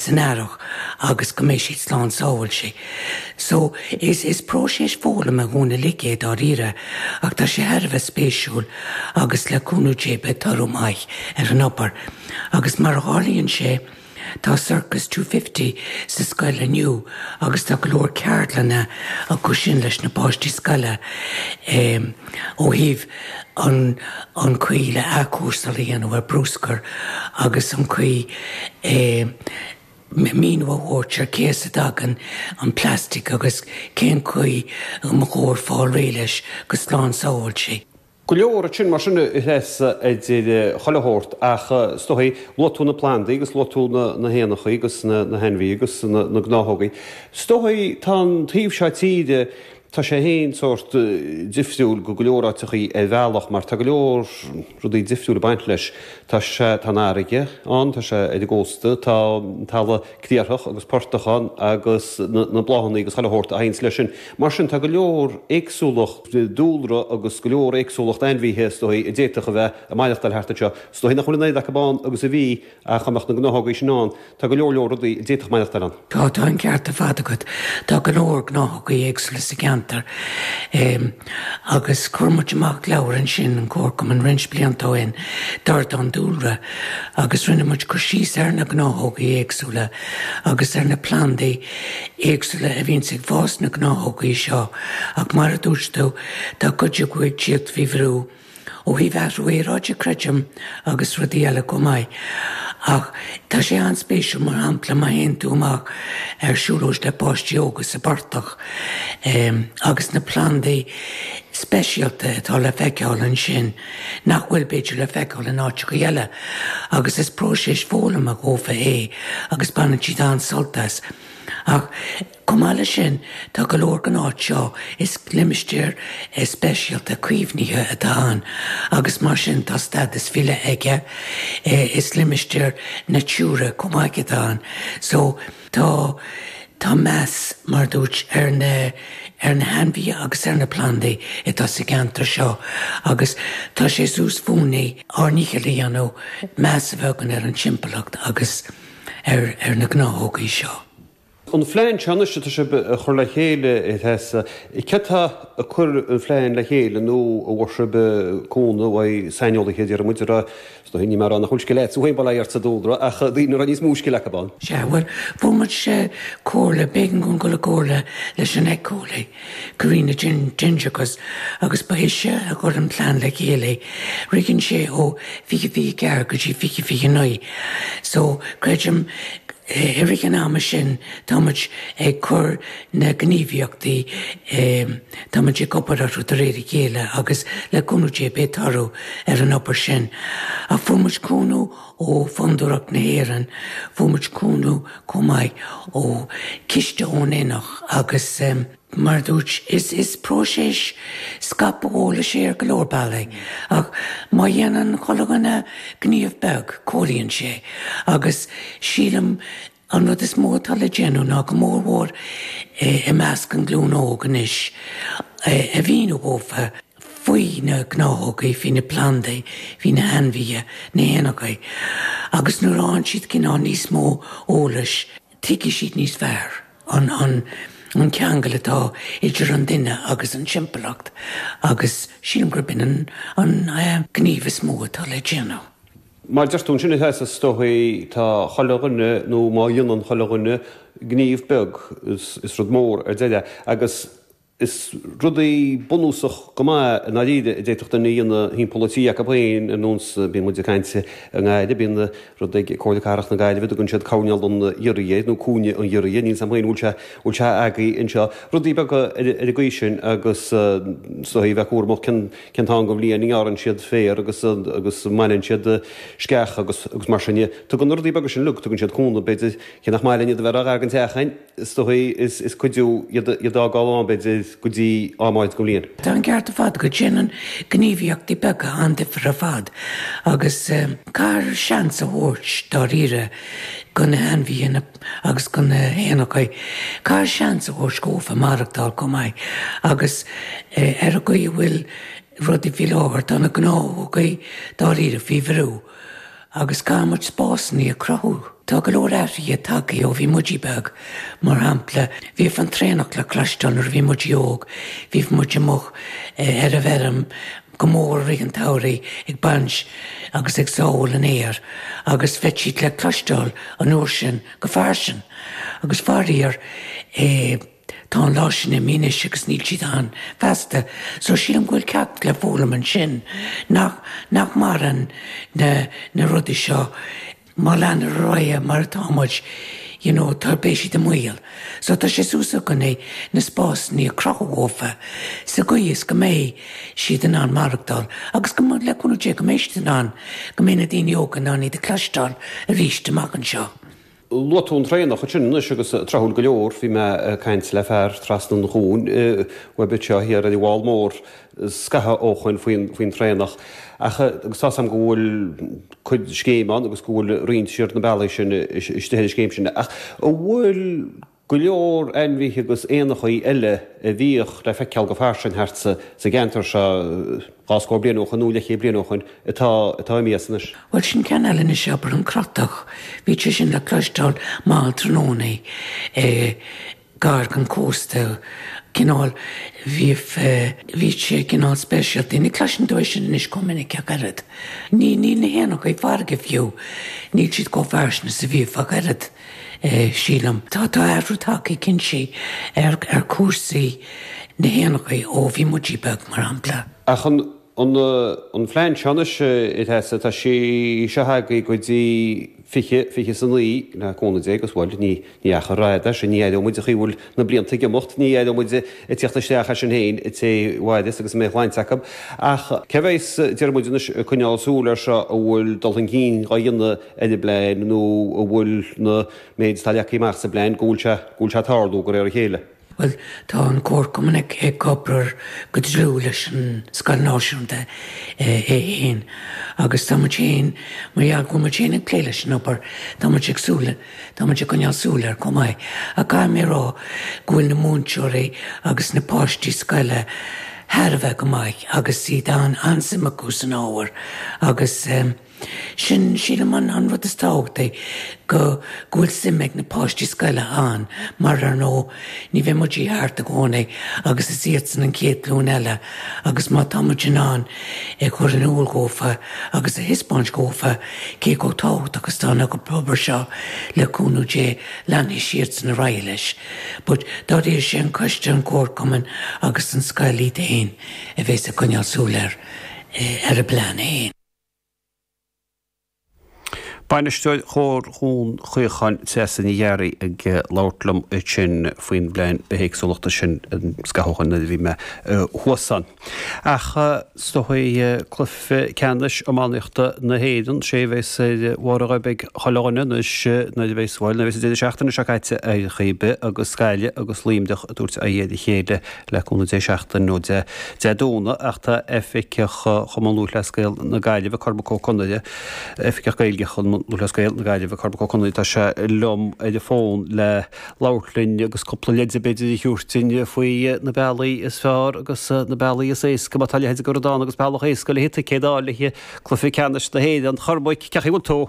san earrach agus go mbeidh siad slán sábháilte. So, is is próiseas foghlama dhúinn uilig é dáiríre ach tá sé thar a bheith spéisiúil agus le cúnamh Dé beidh toradh maith ar an obair agus mar a tharlaíonn sé tá Circus Two Fifty sa scoil inniu agus tá go leor ceardlanna acu sin leis na páistí scoile ó thaobh an chaoi le athchúrsáil a dhéanamh ar bruscar agus an chaoi le míniú a thabhairt ar cé as a dtagann an plastic agus cén chaoi a mba chóir fáil réidh leis go slán sábháilte. Go leor rud sin mar sin a Threasa idir chuile shórt ach is dóiche luaigh tú na plandaí agus luaigh tú na héanachaí agus na hainmhithe agus na gnáthógaí. Is dóiche tá an taobh seo tíre Tá sé féin sórt difriúil go go leor áiteachaí ar bhealach mar tá go leor rudaí difriúil ag baint leis. Tá sé, tá an fharraige ann, tá sé ar an gcósta, tá an talamh criathrach agus portach ann agus na bláthanna agus chuile shórt a théanns leis sin. Mar sin tá go leor éagsúlacht dúlra agus go leor éagsúlacht ainmhithe is dóigh a d'fhéadfadh a bheith ag maireachtáil thart anseo. Is dóigh nach bhfuil an oiread acu ann agus a bhí Ach dá mbeadh na gnáthóga sin ann, tá go leor leor rudaí a d'fhéadfadh maireachtáil ann. Tá, tá an ceart ar fad agat. Tá go leor gnáthóga éagsúla sa gceantar. Agus chuir muid amach leabhar ansin, an comharchumann, roinnt blianta ó shin, Dordán Dúlra, agus rinne muid cur síos ar na gnáthóga éagsúla agus ar na plandaí éagsúla a bhíonn ag fás sna gnáthóga seo. Ach mar a dúirt tú, tá cuid acu ag tíocht faoi bhrú. Ó thaobh athrú aeráide creidim, agus rudaí eile chomh maith, ach tá sé an-spéisiúil, mar shampla, má théann tú amach ar siúlóid le páistí óga sa bportach agus na plandaí speisialta atá le feiceáil ansin nach bhfuil, b'fhéidir, le feiceáil in áiteachaí eile. Agus is próiseas foghlama dhófa é agus baineann siad an-sult as. Ach. Chomh maith leis sin, tá go leor den áit seo is limistéar speisialta caomhnaithe atá ann agus mar sin tá stádas faoi leith aige is limistéar Natura chomh maith atá ann. So, tá, tá meas, mar dúirt, ar na, ar na hainmhithe agus ar na plandaí atá sa gceantar seo agus tá sé suas fúinne ár ndícheall a dhéanamh meas a bheith againn ar an timpeallacht agus ar, ar na gnáthógaí seo. An phlean seo anois atá sibh a chur le chéile, a Threasa, cé atá ag cur an phlean le chéile nó an bhfuair sibh cúnamh ó saineolaithe, déarfaidh muid, a raibh, is dóigh, níl mé ag rá nach bhfuil scil agat féin, bail ó Dhia ort, sa dúlra, ach daoine a raibh níos mó scil acu ann? Sea, bhuel, fuair muid comhairle, b'éigean dúinn dul i gcomhairle leis an ecole. Cuireann na Dinnseanchas agus b'eisean a chuir an plean le chéile, ritheann sé ó fiche fiche ceathair go dtí fiche fiche naoi, so creidim i rith an ama sin tá muid ag cur na gníomhaíochtaí, tá muid ag obair orthu de réir a chéile agus le cúnamh Dé beidh toradh ar an obair sin. Ach fuair muid cúnamh Ó Fhondúireacht na hÉireann, fuair muid cúnamh chomh maith ó chiste ón Enech agus. mar a dúirt, is próiseas scaipthe eolais é ar go leor bealaí ach má dhéanann chuile dhuine gníomh beag, comhlíonn sé agus sílim, An rud is mó atá le déanamh ná go mór mhór i measc an ghlúin óg anois a mhíniú dhófa faoi na gnáthógaí, faoi na plandaí, faoi na hainmhithe, na héanachaí, agus nuair a fhaigheann siad cineál níos mó eolais tuigfidh siad níos fearr an ceangal atá idir an duine agus an timpeallacht agus sílim gurb in an an gníomh is mó atá le déanamh. Mar a deir tú ansin, is ea, is dóigh, tá chuile dhuine, nó má dhéanann chuile dhuine gníomh beag, is rud mór é ar deireadh. Agus is rudaí bunúsach go maith i ndáiríre a d'fhéadfadh duine a dhéanamh thimpeall an tí acu féin ar nós, bíonn muid ag caint i nGaillimh, bíonn rud ag Comhairle Cathrach na Gaillimhe, tugann siad coirnéal an ghiorria nó cúinne an ghiorria, níl 's a'm féin an bhfuil sé, bhfuil sé agaí anseo. Rudaí beaga ar an gcaoi sin agus is dóigh a bheith cúramach cén cén t-am den bhliain a ngearrann siad féar agus agus a mbaineann siad sceach agus agus mar sin de. Tugann na rudaí beaga sin uilig, tugann siad cúnamh b'fhéidir, cé nach maith linn iad a bheith ró-ghar den teach ach is dóigh is is cuidiú iad iad a fhágáil ann b'fhéidir go dtí am áirid den bhliain. Tá an ceart ar fad agat, déanann gníomhaíochtaí beaga an-difear ar fad agus caithfear seans a thabhairt dáiríre do na hainmhithe, na. agus do na héanachaí caithfear seans a thabhairt dhófa maireachtáil chomh maith agus ar an gcaoi a bhfuil rudaí faoi láthair. Tá na gnáthógaí dáiríre faoi bhrú agus caithfidh muid spásannaí a chruthú. Tá go leor athruithe tagtha ó bhí muide beag, mar shampla, bhíodh an traonach le cloisteáil nuair a bhí muid óg, bhíodh muid amuigh ar an bhfeirm, go mór mhór i rith an tsamhraidh ag baint agus ag sábháil an fhéir agus bhíodh siad le cloisteáil an uair sin go fairsing agus faraor eh tá an lá sin imithe anois agus níl siad ann feasta so sílim go bhfuil ceacht le foghlaim ansin nach nach maireann na na rudaí seo eh Má leanann ar aghaidh mar atá muid, you know, tá beidh siad i mbaol. So tá sé suas againne na spásanna a chruthú dhófa sa gcaoi is go mbeidh siad in ann maireachtáil agus go, le cúnamh Dé, go mbeidh siad in ann, go mbeidh na daoine óga in ann iad a cloisteáil arís amach anseo. Luaigh tú an traonach ansin anois agus tráthúil go leor, bhí mé ag caint le fear trasna an chuain uaibh anseo thiar ar an bhFál Mór, scaitheamh ó shoin faoin traonach ach tá fhios agam go bhfuil cuid scéim ann agus go bhfuil roinnt siar na bealaí sin istigh ar an scéim sin ach an bhfuil go leor ainmhíthe agus éanachaí eile a bhíodh le feiceáil go fairsing thart sa gceantar seo dhá scór bliain ó shoin nó leithchéad bliain ó shoin atá imithe anois? Bhuel, sin ceann eile anois, abair, an crotach, bhíodh sé sin le cloisteáil mall tráthnóna i gar don chósta, cineál, bhí, bhí sé cineál speisialta, ní chloiseann tú é sin anois chomh minic ach oiread, ní, níl na héanachaí farraige fiú, níl siad chomh fairsing is a bhíodh ach oiread, sílim. Tá, tá athrú tagtha cinnte ar, ar chúrsaí na héanachaí ó bhí muidí beag, mar shampla. Ach an, An an plean seo anois a Threasa tá sé seo agaí go dtí 20 20 is 9 le cúnamh Dé agus bhuel ní ní achar fada é ní aireoidh muid an chaoi a bhfuil na blianta ag imeacht ní aireoidh muid ag tíocht isteach é sin féin an té a mhairfeas agus a mbeidh a shláinte acu ach cé bheas deir muid anois ag coinneáil súil ar seo an bhfuil dul chun cinn á dhéanamh ar an bplean nó an bhfuil an méid atá leagtha amach sa bplean go bhfuil sé go bhfuil sé ag tarlú de réir a chéile. Bhuel, tá an comharchumann ag obair go dlúth leis an Scoil Náisiúnta é fhéin agus tá muid fhéin, mar gheall go bhfuil muid fhéin ag plé leis an obair, tá muid ag súil, tá muid ag coinneáil súil air chomh maith ach caithfidh mé a rá go bhfuil na múinteoirí agus na páistí scoile thar a bheith go maith agus tá an-suim acu san ábhar agus. Sin, sílim, an an rud is tábhachtaí, go, go bhfuil suim ag na páistí scoile ann, mar ar ndóigh, ní bheidh muidí thart i gcónaí agus is iadsan an chéad ghlúin eile agus má tá muid in ann a chur in iúl dhófa agus a thispeáint dhófa cé chomh tábhachtach is tá an obair seo le cúnamh Dé leanfaidh siadsan ar aghaidh leis. But dáiríre sé an coiste an comharchumann agus an scoil iad fhéin a bhéas ag coinneáil súil ar ar an bplean fhéin. Bainisteoir Chomhar Dhún Chaocháin, Treasa Ní Ghearraigh, ag labhairt liom ansin faoin bPlean Bithéagsúlachta sin, scaitheamh ó shoin nuair a bhí mé thuas ann. Ach is dóichí cluiche ceannais iománaíochta na hÉireann, sé a bheas ar bharr a ghoib ag chuile dhuine anois nuair a bheas, bhuel, nuair a bheas an deireadh seachtaine seo caite ar chaoi ar bith agus Gaillimh agus Luimneach ag tabhairt aghaidh ar a chéile le cúnamh Dé seachtain ó Dé Domhnaigh ach tá Oifigeach Chumann Lúthchleas Gael na Gaillimhe, Cormac Ó Conaire, Oifigeach Gaeilge Chumann Lúthchleas Gael na Gaillimhe, Cormac Ó Conaire, tá sé liom ar an fón le labhairt linn agus cúpla leide b'fhéidir a thabhairt dúinn faoi na bealaí is fearr agus na bealaí is éasca má tá a leithéid de rud ann agus bealach éasca le haghaidh ticéid a fháil le Cluiche Ceannais na hÉireann. A Chormaic, cén chaoi a bhfuil tú?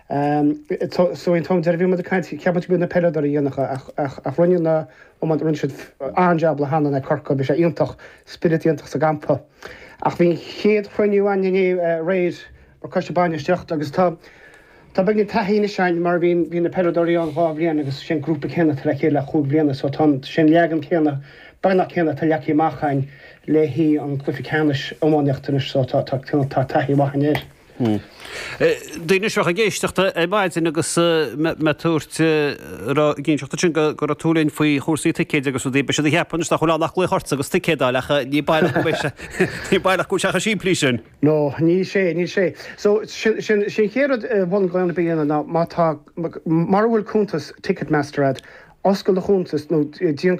Tá an t-am deireadh bhí muid ag caint ceapann tú go na peileadóirí dhéanacha ach ach rinne na hiománaithe rinne siad an-jab le hanna le Corcaigh bhí sé iontach spiorad iontach sa gcampa ach bhí an chéad chruinniú againn inné aréir mar coiste bainistiocht agus tá tá beagin taithí anois againn mar bhí bhí na peileadóirí ann dhá bhliain agus sé an grúpa céanna atá le chéile le cúig bliana so tá sé an leagan céanna beagnach céanna atá leagtha amach againn le haghaidh an cluiche ceannais iománaíocht anois so tá tá tá taithí mhaith againn air. Daoine anseo ag éisteacht ar maidin agus mé ag tabhairt cinseachta sin go raibh tú linn faoi chúrsaí ticéid agus rudaí, beidh siad ag ceapadh anois nach bhfuil ann ach glaoch ortsa agus ticéad a fháil ach ní baileach go mbeidh sé, ní baileach go bhfuil sé chomh simplí sin. No, níl sé, níl sé. So, sin, sin, sin an chéad rud a bheadh gá a dhéanamh ná má tá, mura bhfuil cuntas Ticketmaster agat, oscail do chuntas nó déan,